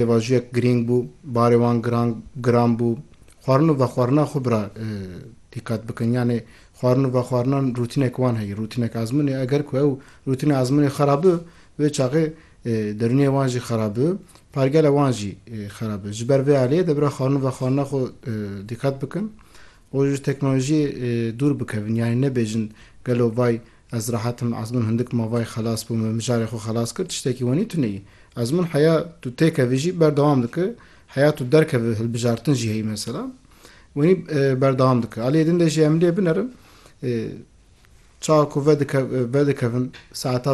Pêvajoyek girîng bû, barê wan giran giran bû. Xwarin û vexwarinan xwe bira dîqet bikin. Yanê xwarin û vexwarinan rûtînek wan heye, rûtînek ezmûn e. Eger ku ew rûtîna ezmûnê xera bi, wê çaxê derûniyê wan jî xera bi, pergela wan jî xera bi. Ji ber vê aliyê debira xwarin û vexwarinan xwe dîqet bikin û ji teknolojiyê dûr bikevin. Yanê nebêjin gelo vay Ez rehet im, Ezmûn hindik mavayê xelas bû, min mijarê xwe xelas kir, tiştekî wenî tu neyî. Ezmûn heya tu têkevî jî berdewam dikir, heya tu derkevî hilbijartin jî heyî mesela wenî berdewam dikir. Aliyê din de jî em lê binerin çawa ku vedikevin saeta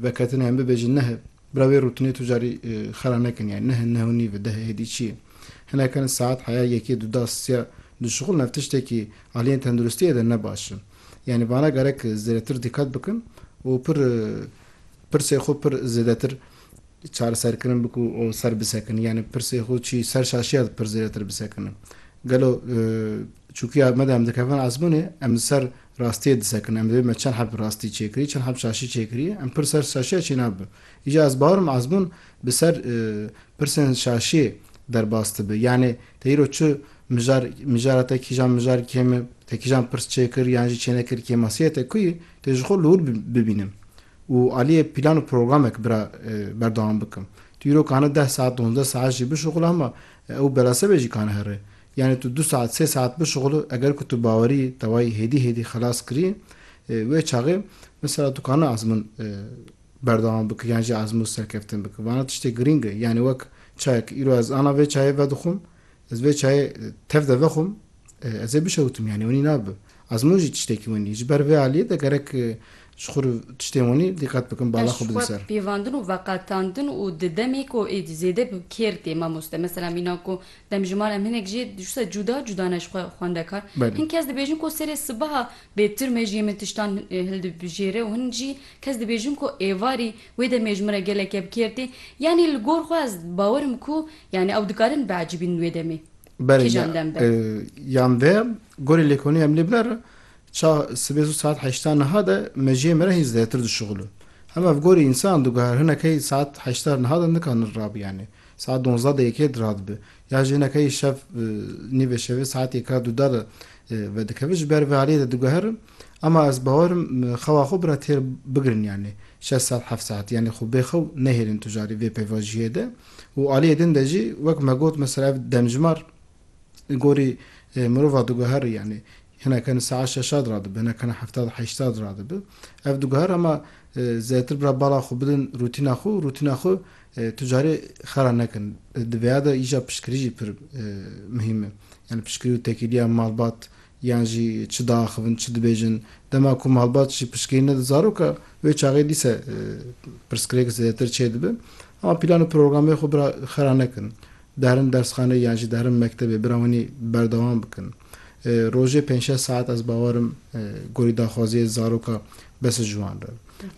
veketinê em bibêjin nehi bira wê rûtinê tu carî xera nekin yanî nehi neh û nîve deh hêdî çi ye. Hinekin saet heya yekê du da siya dişuxulin ev tiştekî aliyên tenduristiyê de ne baş in. Yanî vana gerek zêdetir dîqet bikin û pir pirsê xwe pir zêdetir çareserkirin bikin û ser bisekin. Yanî pirsê xwe çî ser şaşiya di pir zêdetir bisekinin. Gelo çûkiya me de em dikevin ezmûnê em li ser rastiyê disekinin. Em dibê me çend heb rastî çêkirî, çend heb şaşî çêkirî em pir ser şaşiya çê nabin. Îcar ez bawer im ezmûn bi ser pirsên şaşiyê derbas dibe. Yanî te îro çi Mijar, mijara te kîjan mijar kêm e, te kîjan pirs çêkir yan jî çênekir kêmasiyê te ku yê, tê ji xwe li wir bibînim û aliyê pîlan û programek bira berdewam bikim. Tu îro kane deh saet, donzdeh saet jî bişuxule hema ew bela se be jî kane here. Yanî tu du saet, sê saet bişuxule eger ku tu bawerî tewayî hêdî hêdî xelas kirî wê çaxê mesela tu kane ezmin berdewam bikir yan jî ezmû serkeftin bikir. Vana tiştê girîng e. Yanî wek çayek, îro ez ana vê çayê vedixwim, Ez vê çayê tev de vexwim, ez ê bişewtim yanî winî nabe. Ez min jî tiştekî winî. Ji ber vê aliyê de gerek ji xwe re tiştên winî dîqet bikim, bala xwe bidin ser. Pêvandin û veqetandin û di demê ku êdî zêde bi kêr tê mamoste. Mesela mîna ku demjimar em hinek jê dişusa cuda cuda ne ji xwe xwendekar. Hin kes dibêjin ku serê sibeha bêtirmejiyê min tiştan hildibijêre û hin jî kes dibêjin ku êvarî Wê demê ji min re gelekê bi kêr tê. Yanî li gor xwe ez bawer im ku yanî ew dikarin biecibînin wê demê. Belê Kîjan dem be? Yan vê gorê lêkolînê em lê biner e. Ça sibê zû saet heşta niha de mejiyê me re hîn zêdetir dişuxil in. Hema ev gorî însan diguher hinekey saet heşta niha de nikanin rabi yanî saet donzdeh de yekê de radibi. Ya jî hinekey şev nîvê şevê saet yeka dûda de vedikevin. Ji ber vê aliyê de diguherim Ama ez bawer im xewa xwe bira têr bigirin yanî şeş saet heft saet yanî xwe bê xew nehêlin tu carî vê pêvajiyê de û aliyê din de jî wek me got mesela ev demjimar li gorî mirova diguherî yanî hineke din saet şeşad radibi hineke din heftad heştad radibi ev diguher ama zêtir bira bala xwe bidin rûtîna xwe û rûtîna xwe tu carî xera nekin di vêya de îja piştgirî jî pir mihîm e yanî piştgirî û tekîliya malbat yan jî çi diaxivin, çi dibêjin, dema ku me helbat jî piştgirî neda zaroka wê çaxê dîse pirsgirêk zêdetir çêdibe. Ema pîlan û programê xwe bira xera nekin. Diherin dersxaneyê yan jî diherin mektebê bira hûnî berdewam bikin. Rojê pênc şeş saet ez bawer im gorî daxwaziyê zaroka bes ji wan re.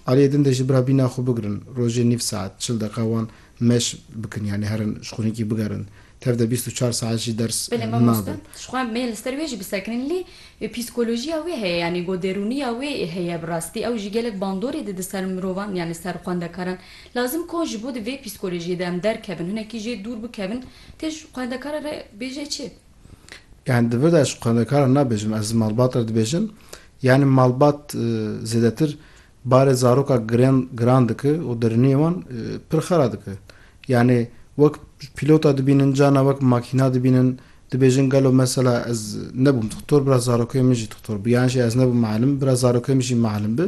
Aliyê din de jî bira bîna xwe bigirin rojê nîv saet, çil deqiqa wan meş bikin yanî herin ji xwînîkî bigerin Tev de bîst û çar saet jî ders Belê mamoste, nabin. ji xwe me li ser wê jî bisekinîn lê psîkolojiya wê heye yanî got derûniya wê heye bi rastî ew jî gelek bandorê dide ser mirovan yanî ser xwendekaran. Lazim ko ji bo di vê psîkolojiyê de em derkevin hinekî jê dûr bikevin tê ji xwendekara re bêje çi? Yanî di vir de ez ji xwendekaran nabêjim ez malbat re dibêjim yanî malbat zêdetir Barê zaroka giran giran dike û diriniyê wan pir xera dike. Yanî wek pîlota dibînin carna wek makîna dibînin. Dibêjin gelo mesela ez nebûm dixtor bira zarokê min jî dixtor bi yan jî ez nebûm mialim bira zarokê min jî mialim bi.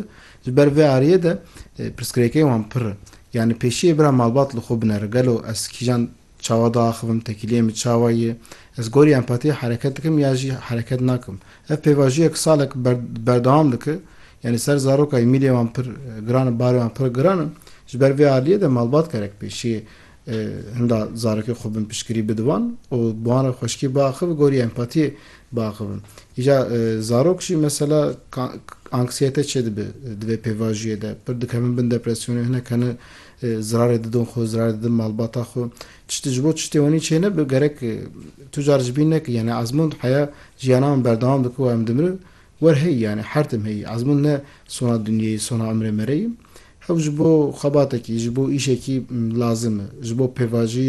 Ji ber vê ariyê de pirsgirêkên wan pir in. Yanî pêşiyê bira malbat li xwe binere gelo ez kîjan Çawa diaxivim, tekîliyê min çawa ye? Ez gorî empatiyê hereket dikim ya jî hereket nakim? Ev pêvajiyek salek ber berdewam dike. Yanî ser zaroka Emîliyê wan pir giran in, barê wan pir giran in. Ji ber vê aliyê de malbat gerek pêşî hinda zarokê xwe bin piştgirî bide wan û bi wan re xweşikî biaxive, gorî empatiyê biaxivim. Îja zarok jî mesela anksiyete çêdibe di vê pêvajiyê de. Pir dikevin bin depresyonê, hinek hene Zirarê didon xwe, zirarê didin malbata xwe. Tiştê ji bo tiştê wenî çê nebe gerek tu car ji bîn nekî. Yanî ezmûn heya jiyana min berdewam dike û em dimire wer heyî yanî her tim heyî. Ezmûn ne sona dinyeyê, sona imrê me re ye. Hew ji bo xebatekî, ji bo îşekî lazim e. Ji bo pêvajiyê